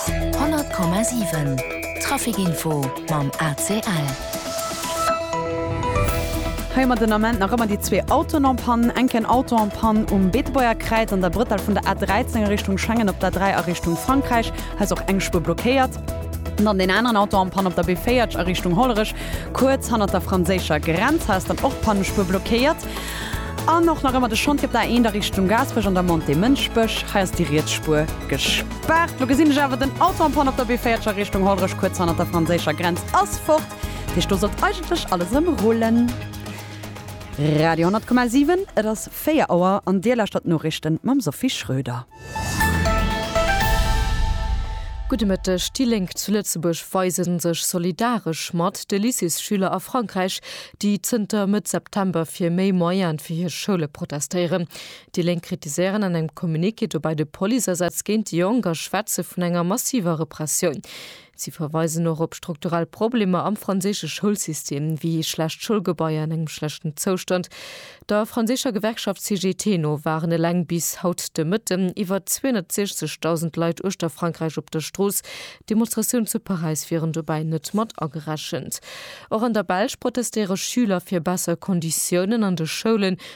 100,7 Trafic Info mam ACL. Hei hu mer den Ament nach ëmmer déi zwee Autoen en panne. Enk en Auto en panne um Beetebuerger Kräiz an der Brëttel vun der A13 a Richtung Schengen op der A3 a Richtung Frankräich. Hei ass och eng Spuer blockéiert. An dann deen aneren Auto en panne op der B40 a Richtung Hollerech, kuerz hannert der franséischer Grenz. Hei ass dann och d'Pannespuer blockéiert. An och nach ëmmer de Chantier op der eender Richtung Gaasperech an der Montée Mënschbech. Hei ass déi riets Spuer gespaart. Lo gesinn ech awer, den Auto en panne op der B40 a Richtung Hollerech, kuerz hannert der franséischer Grenz, ass fort. Dat heescht, do sollt eigentlech alles erëm rullen. Radio 100,7, et ass 4 Auer an Dir lauschtert d'Noriichten mam Sophie Schröder. Gudde Mëtteg, Déi Lénk zu Lëtzebuerg weise sech solidaresch mat de Lycéesschüler a Frankräich, déi zënter Mëtt September fir méi Moyene fir hir Schoule protestéieren. Déi Lénk kritiséieren an engem Communiqué dobäi de Policeasätz géint déi Jonk a schwätze vun enger massiver Repressioun. Si verweisen och op strukturell Problemer am franséische Schoulsystem, wéi schlecht Schoulgebaier an engem schlechten Zoustand. Der franséischer Gewerkschaft CGT no waren eleng bis haut de Mëtten iwwer 260.000 Leit uechter Frankräich op der Strooss. Demonstratioun zu Paräis wieren dobäi net mat agerechent. Och an der Belsch protestéiere Schüler fir besser Konditiounen an de Schoulen.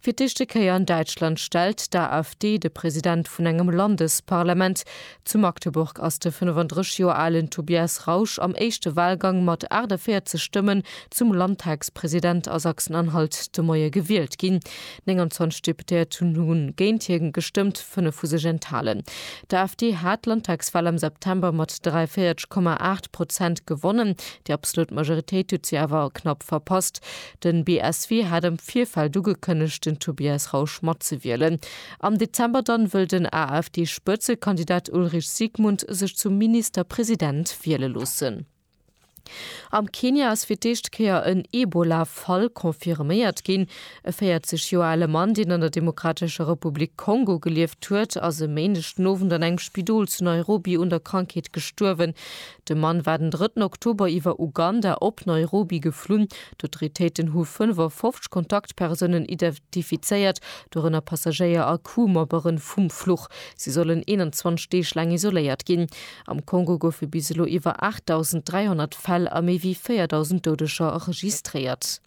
Fir d'éischte Kéier an Däitschland stellt d'AfD de President vun engem Landesparlament. Zu Magdeburg ass de 35 Joer alen Tobias Rausch am éischte Walgang mat 48 Stëmmen zum Landtagspresident a Sachsen-Anhalt de Moie gewielt ginn. 29 Deputéierten hu géint hie gestëmmt, fënnef hu sech enthalen. D'AfD hat d'Landtagswal am September mat 43,8 Prozent gewonnen. Déi absolut Majoritéit huet si awer knapp verpasst. Den BSW hat am Virfeld ugekënnegt den Tobias Rausch matzewielen. Am Dezember dann wëll den AfD-Spëtzekandidat Ulrich Siegmund sech zum Ministerpresident wiele loossen. Am Kenia ass fir d'éischt Kéier en Ebola-Fall confirméiert ginn. E 40 Joer ale Mann, deen an der Demokratescher Republik Kongo gelieft huet, ass e Méindeg den Owend an engem Spidol zu Nairobi un der Krankheet gestuerwen. De Mann war den drëtten Oktober iwwer Uganda op Nairobi geflunn. D'Autoritéiten hu 55 Kontaktpersounen identifizéiert, dorënner Passagéier a Crew-Membere vum Fluch. Si sollen 21 Deeg laang isoléiert ginn. Am Kongo goufe bis elo iwwer 8.300 Fäll a méi wéi 4.000 Doudeger registréiert.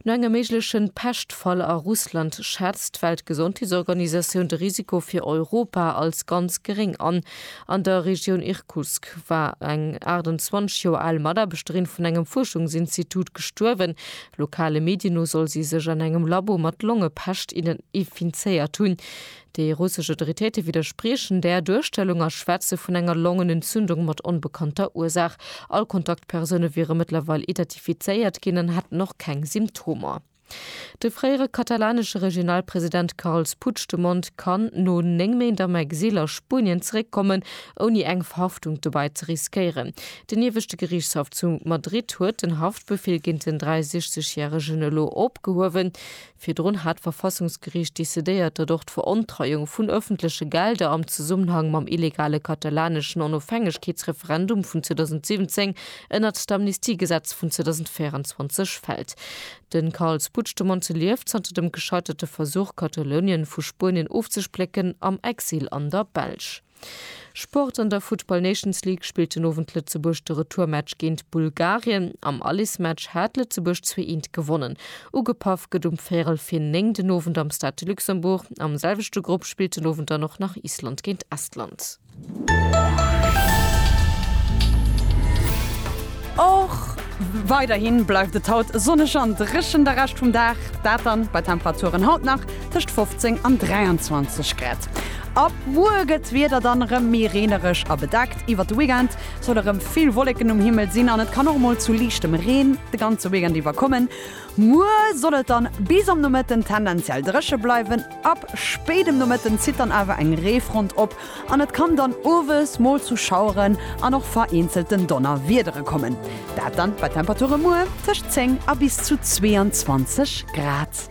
No engem méigleche Peschtfall a Russland schätzt d'Weltgesondheetsorganisatioun de Risiko fir Europa als ganz geréng an. An der Regioun Irkutsk war eng 28 Joer al Mataarbechterin vun engem Fuerschungsinstitut gestuerwen. Lokale Medien no soll si sech an engem Labo mat Longepescht infinzéiert hunn. Déi russesch Autoritéite widderspriechen där Duerstellung a schwätze vun enger Longenentzündung mat onbekannter Ursaach. All Kontaktpersoune wiere mëttlerweil identifizéiert ginn an hätten och keng Symptomer. De fréiere katalanesche Regionalpresident Carles Puigdemont kann no 9 Méint am Exil a Spuenien zeréckkommen, ouni eng Verhaftung dobäi ze riskéieren. Den Ieweschte Geriichtshaff zu Madrid huet den Haftbefeel géint den 63 järegen elo opgehuewen. Virdrun hat d'Verfassungsgeriicht decidéiert, datt och d'Verontreiung vun ëffentleche Gelder am Zesummenhang mam illegale katalaneschen Onofhängegkeetsreferendum vun 2017 ënnert d'Amnistiegesetz vun 2024 fält. De Carles Puigdemont lieft, zanter dem gescheiterte Versuch, Katalounien vu Spuenien ofzesplécken, am Exil an der Belsch. Sport, An der Football Nations League spillt den Owend Lëtzebuerg de Retourmatch géint Bulgarien. Am Alismatch hat Lëtzebuerg zwee eent gewonnen. Ugepaff gëtt um véierel vir néng den Owend am Stade de Luxembourg. Am selwechte Grupp spillt den Owend dann och nach Island géint Estland. Och weiderhi bleift et haut sonneg an dréchen de Rescht vum Dag. Dat dann bei Temperaturen haut nach tëscht 15 an 23 Grad. Ab muer gëtt d'Wieder dann erëm méi reenereg a bedeckt. Iwwert de Weekend solle erëm vill Wolleken um Himmel sinn an et kann och mol zu liichtem Reen de ganze Weekend iwwer kommen. Muer soll et dann bis am Nomëtten tendenziell dréche bleiwen. Ab spéit um Nomëtten zitt dann awer eng Reefront op an et kann dann owes mol zu Schaueren an och vereenzelten Donnerwiedere kommen. Dat dann bei Temperature muer tëscht 10 a bis zu 22 Grad.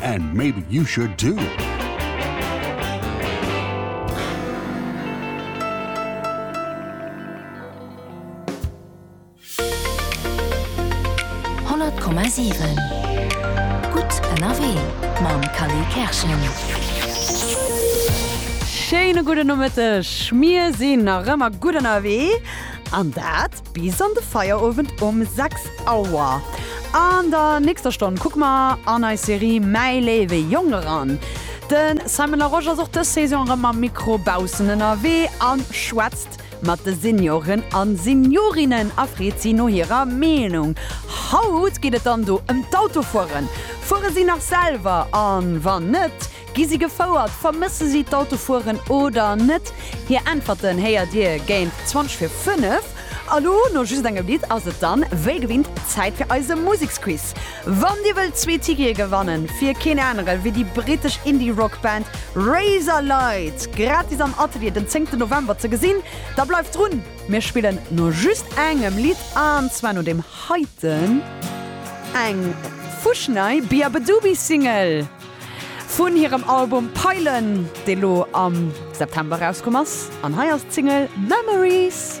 And maybe you should too! Schéine gudden Nomëtteg! Mir sinn nach ëmmer gutt ënnerwee an dat Bis an de Feierowend um 6 Auer. An der nächster Stonn kucke mer an eis Serie Mäi léiwe Jong eran. De Simon Larosche ass och dës Saison erëm mam Mikro baussen ënnerwee a schwätzt mat de Senioren a Seniorinnen a freet si no hirer Meenung. Haut geet et dann do ëm d'Autofueren. Fuere si nach selwer? A wann net, Gi si gefouert? Vermësse si d'Autofueren oder net? Hir Äntwerten héiert Dir géint 20 vir 5. A lo, no just engem Lidd, ass et dann wéi gewinnt Zäit fir eise Museksquiz. Wann Dir wëllt zwee Tickete gewannen fir keen anere wéi déi brittesch Indie-Rock-Band Razorlight gratis am Atelier den zéngten November ze gesinn, da bleift drun. Mir spillen no just engem Lidd, an zwar no deem heiten, eng fuschnei Beabadoobee-Single. Vun hirem Album Peilen, dee lo am September erauskomm ass. An hei ass d'Single Memories.